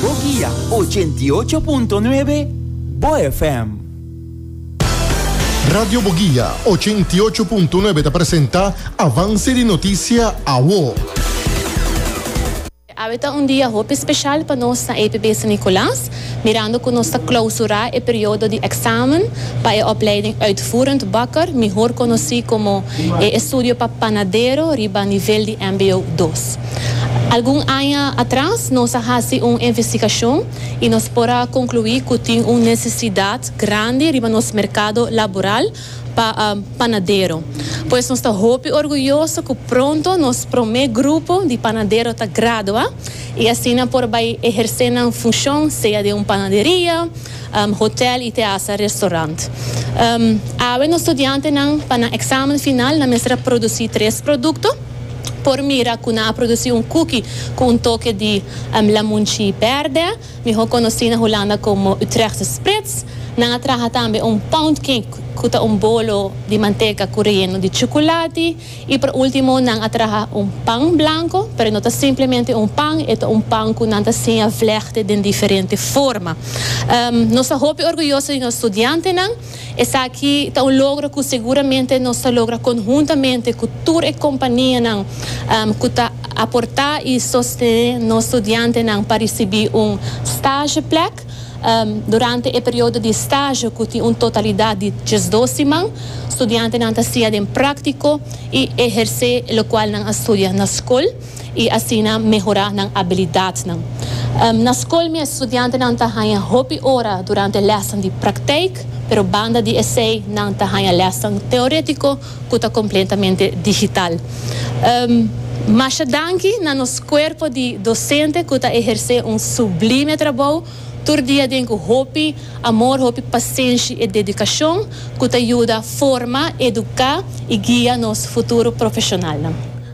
Bo guia ochenta i ocho punto nuebe Bo FM. Radio Bo Guia ochenta i ocho punto nuebe ta presenta Avance di Noticia Awo. Awe ta un dia hopi special pa nos na EPB San Nicolaas, mirando cu nos ta clausura e periodo di examen pa e opleiding Uitvoerend Bakker, mihor conoci como e estudio pa panadero riba nivel di mbo dos. Algun aña atras nos a hasi un investigashon i nos por a konkluí ku tin un nesesidat grandi riba nos merkado laboral pa panadero. Pues nos ta hopi orguyoso ku pronto nos promé grupo di panadero ta gradua i asina por bai ehersé nan funshon sea den un panaderia, hotèl i te hasta restorant. Awe nos studiantenan pa nan eksamen final nan mester a produsí tres produkto. por mira cu nan a produci un cookie cu un toke di lamunchi berde, miho conoci na Hulanda como Utrechtse Sprits. Nan a traha tambe un poundcake cu ta un bolo di manteca cu reyeno di chuculati. Y por ultimo nan a traha un pan blanco, pero e no ta simplemente un pan, e ta un pan cu nan ta siña vlechte den diferente forma. Nos ta hopi orguyoso di nos studiantenan Esaki ta un logro cu seguramente nos ta logra conhuntamente cu tur e companianan cu ta aporta y sostene nos studiantenan pa ricibi un stageplek durante e periodo di stage cu tin un totalidad di diesdos siman. Studiantenan ta siña den practico y eherce locual nan a studia na scol. i asina mehorá nan abilidatnan. Na skol mi e studiantenan ta haña hopi ora durante lèsnan di praktijk, pero banda di esei nan ta haña lèsnan teorétiko ku ta kompletamente digital. Masha danki na nos kuerpo di dosente ku ta ehersé un sublime trabou tur dia den ku hopi amor, hopi pasenshi i dedikashon ku ta yuda forma, eduká i guia nos futuro profeshonalnan.